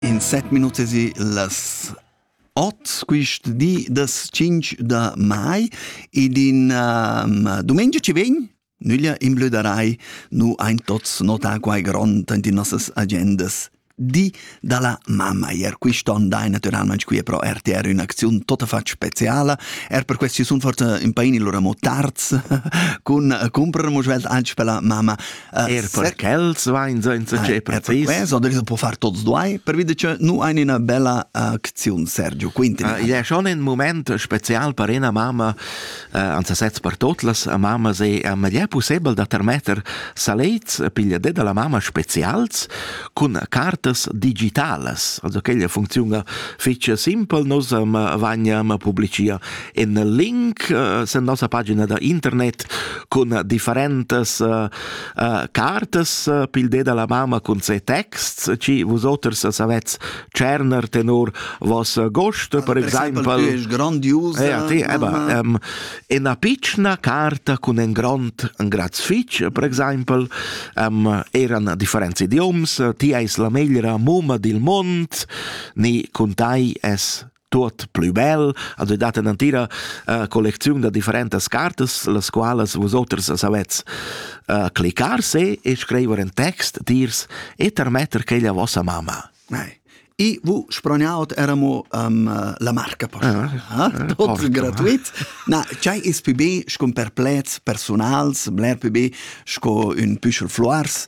in set minut si las ot quist di das 5 da mai ed in um, domenica ci vegn nüglia in blö da rai nu ein tots nota quai grond in die nossas agendas di dalla mamma ier quist'on dai naturalmente qui pro RTR un'azione tota fac speciala er per questi sun forte in paini lura mo tarz cun comprer mo svelt anche per la mamma Er per quels vain senza che precis. Eh, per quellas può far tots duai, per vide che nu ein ina bella acziun, Sergio, quinti. Uh, id è schon in moment spezial per una mamma, uh, anzi sez per totlas mamma, se uh, ma è possibile da termetter salets pigliate dalla mamma specials con cartas digitales. Also quella funziona fece simpel, nos um, vagna ma pubblicia in link uh, sen nossa pagina da internet cun differentes uh, uh, cartas uh, pil de la mamma cun se texts ci vos oters savetz cerner tenor vos gost per example es grandiose ja ti aber um, in a piccina carta cun en grond en graz fitch per example um, eran differenzi idioms ti eis la meglra mumma dil mond ni cun tai es tuot plü bel, also data natira uh, collecziun da differentas cartas, las qualas vosoters savets uh, clicar se e scriver in text dirs e tarmetter che la vossa mamma. Nei. E vous sproniaut eramo um, la marca posta. Ah, eh, Tot gratuit. Na, c'hai is più be sco per plets personals, bler più be sco un püschel floars.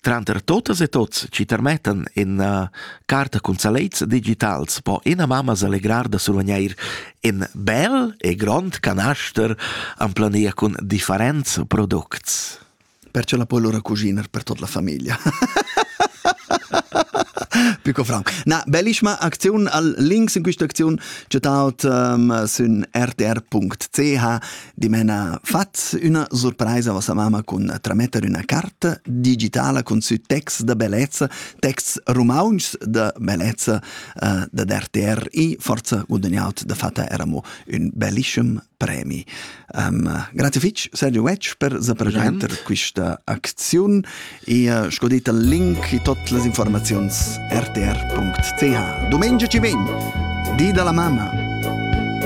Tranter totas e tots chi termettan ina carta cun salets digitals po ina mamma s'allegrar da survgnair in bel e grond canaster en plania cun differents products. Perciò la puoi lura cuciner per tut la famiglia. Pico Frank. Na, bellissima Aktion al links in questa aktion chattaut um, ehm, sün rtr.ch Dimena fat üna surpraisa vossa mamma cun trametter üna carta digitala cun sü texts da bellezza, texts rumauntschs da bellezza uh, da RTR i forza guadagnaut da fatta era mo ün bellischem premi. Um, grazie fitch Sergio Wedge per sa presenter questa acziun e uh, sco detta link e tutte le informazioni rtr.ch. Domenica ci vegn, di dalla mamma.